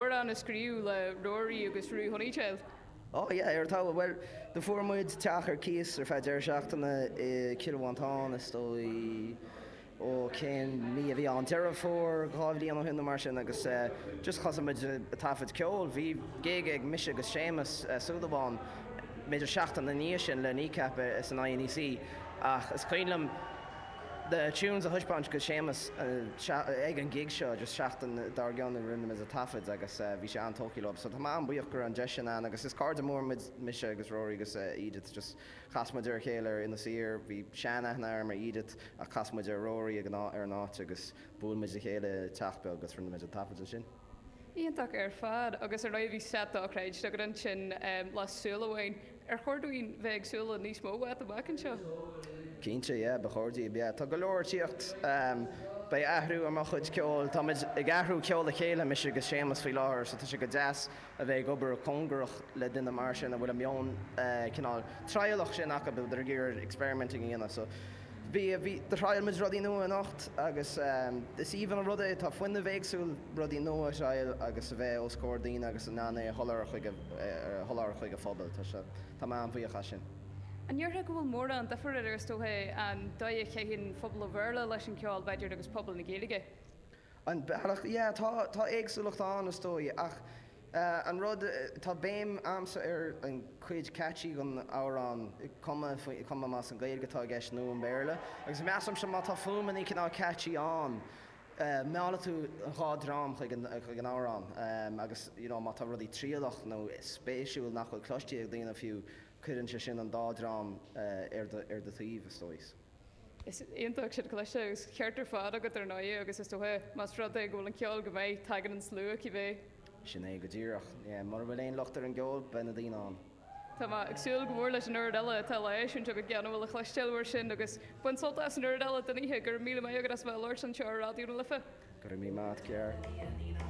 Amhrán a scríobh le Rory agus Ruth Honeycheld. Oh yeah, an t-albam. Bhuel, do fuair muid teach ar cíos ar feadh deireadh seachtaine i gCill Mhantáin, is dóigh, ó cén mí a bhí ann, Deireadh Fómhair dhá bhliain ó shin nó mar sin agus eh just thosaigh muid a' taifead ceol, bhí gig ag mise agus Séamus Ó Súilleabháin b'fhéidir seachtain ina dhiaidh sin le Kneecap san INEC ach is cuimhin liom na tunes a thaispeáint do Shéamus ag an gig seo agus seachtain dár gcionn nó rinne muid an taifead agus bhí sé an-tógtha leo so tá mé an-bhuíoch go raibh an deis sin ann agus is cairde mór mise agus Rory agus Edith just chas muid ar a chéile ar Inis Oírr bhí sean-aithne agam ar Edith ach chas muid ar Rory ag an áit agus bhuail muid le chéile i teach beag agus rinne muid an taifead ansin. Iontach ar fad agus ar ndóigh bhí slot dochreidte agat ansin le Súil Amháin. Ar chóir dúinn bheith ag súil le níos mó uait amach anseo? Cinnte, yeah, ba chóir daoibh, yeah. Tá go leor ag tíocht. Beidh athrú ar mo chuid ceoil. Táimid ag athrú ceol le chéile, mise agus Séamus faoi láthair, so tá sé go deas a bheith ag obair cóngarach le duine mar sin a bhfuil an meon cineál trialach sin acu, a bheith ag iarraidh experimenting a dhéanamh. Bhí, bhí, do thriail muid rudaí nua anocht agus is aoibhinn an rud é, tá fuinneamh éagsúil rudaí nua a thriail agus a bheith os comhair daoine agus in ann é a sholáthar chuig a, a sholáthar chuig an phobail. Tá sé, tá mé an-bhuíoch as sin. An ndéarfá go bhfuil mórán duifir idir, is dócha, an dóigh a gcaitheann pobal an Bhéarla leis an gceol, b'fhéidir, agus pobal na Gaeilge? An bealach? Yeah, tá, tá éagsúlacht ann, is dóigh, ach eh, an rud, tá béim a'msa ar an chuid catchy den amhrán, cuma, cuma más an Gaeilge atá i gceist nó an Béarla, agus measaimse má tá fuaim an chineál catchy ann, eh, meallfaidh tú an dhá dhream chuig an, chuig an amhrán, eh, agus, you know, má tá rudaí trialach nó spéisiúil nach bhfuil cloiste ag daoine fiú, cuireann sé sin an dá dhream, eh, ar do, ar do thaobh, is dóigh. Is iontach sin le cloisteáil agus an ceart ar fad agat ar ndóigh agus is dócha más rud é go bhfuil an ceol go maith tagann an slua cibé. Sin é go díreach. Mura bhfuil aon locht ar an gceol beidh na daoine ann. Tá mé ag súil go mór leis an chuid eile atá le heisiúint agat gan amhras a chloisteáil mar sin agus bain sult as an chuid eile den oíche. Go raibh míle maith agat as bheith ag labhairt anseo ar Raidió na Life. Go raibh míle maith agat Ger.